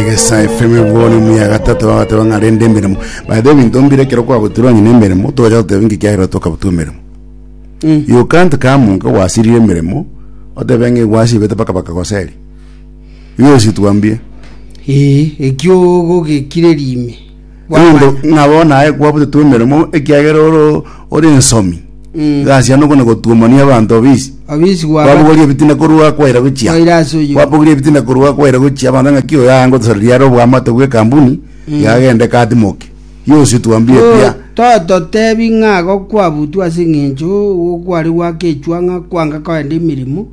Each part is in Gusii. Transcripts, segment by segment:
egesa efeme bono emu ya gatato bagateba ng'a rende emeremo by the way ebinto mbire ekero kwagotirwe onye na emeremo togocha goteba inki kiagera tokabutua emeremo you can't come ng'a gwasirire emeremo otebe ng'a egwasibete mpaka bakagoseri igo gose twambie Ee, ekio gogekireria ime Ninde ng'a bono aye kwabutetwe emeremo ekiagera ore ore ensomi. Mm. Gasi yane okona gotuomania abanto obisi. obisi gwaba Kwabogoria ebitina korwa kwaira gochia. Kwaira ase oyio. Kwabogoria ebitina korwa kwaira gochia abanto ng'a ki oyo ayango tosoro riare obwamate bw'ekambuni yagende katimoke. Yosi twambie ekiya. tototebi ng'a igo kwabutwe ase eng'encho kware gwakechwa ng'a kwanga kogenda emeremo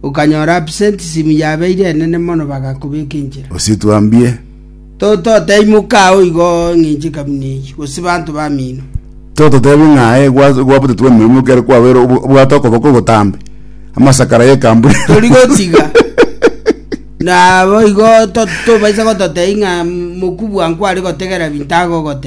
okanyora absenteism yabeire enene mono bagakobeka enchera Osi twambie. Tototeimoka ao igo ng'inche kabuna eyio, gose banto bamino. Tototebi ng'a aye gwa- gwabutetwe emeremo ekero kwabeire obo- obwate okoboko ogotambe, amasakara y'ekambura. Tori gotiga. Nabo igo to- tobaisa gototebia ng'a mokubua nkware gotegera binto agogote.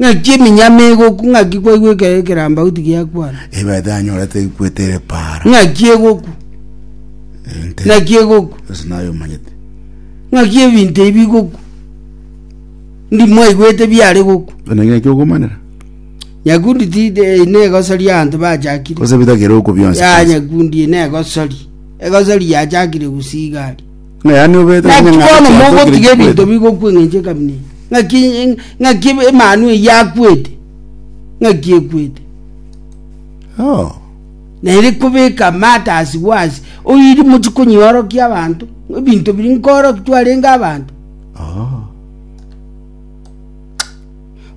Ng'aki eminyama egokwa, ng'aki kwaigwa ekero ekerambauti giakwana. Ebaete yanyorete ekwete ere para. Ng'aki egokwa, Ente. ng'aki egokwa, Ase naye omanyete. ng'aki ebinto ebi bigokwa. Ndi mwaigwete biare gokwa. Buna ng'aki okomanera. Nyakundi tide eye negosori abanto bachakire. Gose bitagere okwo bionsi. Ya nyakundi eye negosori. Egosori yachakire gusii iga aria. Ng'a yaani obete Naki onye ng'a bono chiato kire mogotiga ebinto chikwete. bigokwa engencho ekabina eye. Ng'aki ng'aki emanu eye yakwete, ng'aki ekwete. Oh. Na ere kobeka amato ase gwase, oiri mochi konyiorokia abanto, ebinto biri nkooroki twarenge abanto. Oh.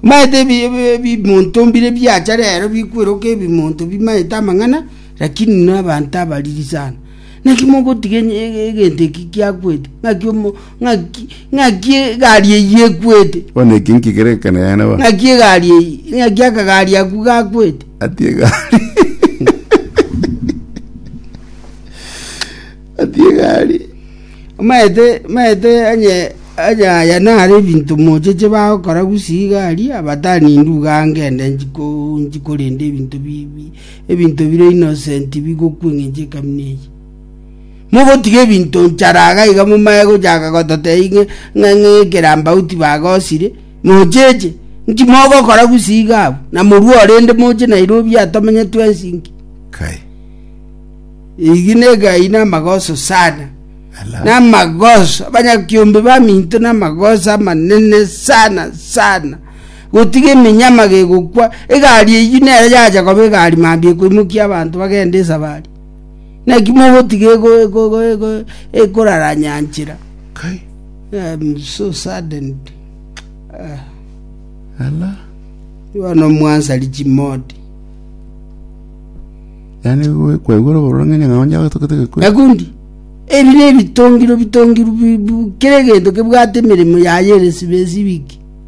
Maete ebi- ebi- ebimonto mbire biacha rero bikweroka ebimonto bimaete amang'ana, lakini na abanto abariri sana. Naki mogotiga egento eki kiakwete? Ng'aki omo- ng'aki- ng'aki egari eyio ekwete? Bono eki nkigere ekana yane bono. Ng'aki egari eyio? Ng'aki akagari aku gakwete? Ati egari. Ati egari. Maete, maete onye onye aya nare ebinto mocheche bagokora gusii gari, abatani nduga ngende nchiko- nchikorende ebinto bi- bi- Ebinto bire innocent bigokwa eng'encho ekamina eye. Mogotiga ebinto nchara iga iga momaye gochaka gototebia ng'a- ng'a- ng'a ekerambauti bagosire, mocheche, nki mogokora gusii iga abwo? Na morue orende moche Nairobi atomenye twensi nki? Kai. Egi negai namagoso sana. Ala. Namagoso, abanyakiombe baminto namagoso amanene sana sana. Gotiga eminyama gegokwa, egari eyio nero yacha koba egari mambia ekoimokia abanto bagende esabari. Naki mogotiga ego- ego- ego- ego- ekoraranya nchera. Kai. I'm so saddened. Ah, Ala. you are no mwansari chimodi. Yaani we- kwaigwa oroboro ng'enya ng'a onye agatokete gekwe. Nakundi, ebi ne ebitongiro bitongiro bi- bu- kera egento kebwate emeremo yaye ere sibesi wiki.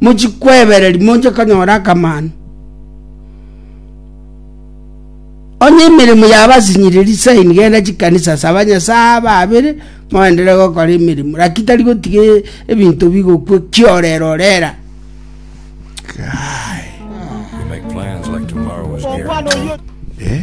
mochikwebereri moche konyora akamanu. Onye emeremo yabasinyiriri saini genda chikanisa saba Nyasaye ababere moendere gokora emeremo laki tari gotiga e- ebinto bigokwe kiorera orera. Guy. You make plans like tomorrow is guaranteed. Eh?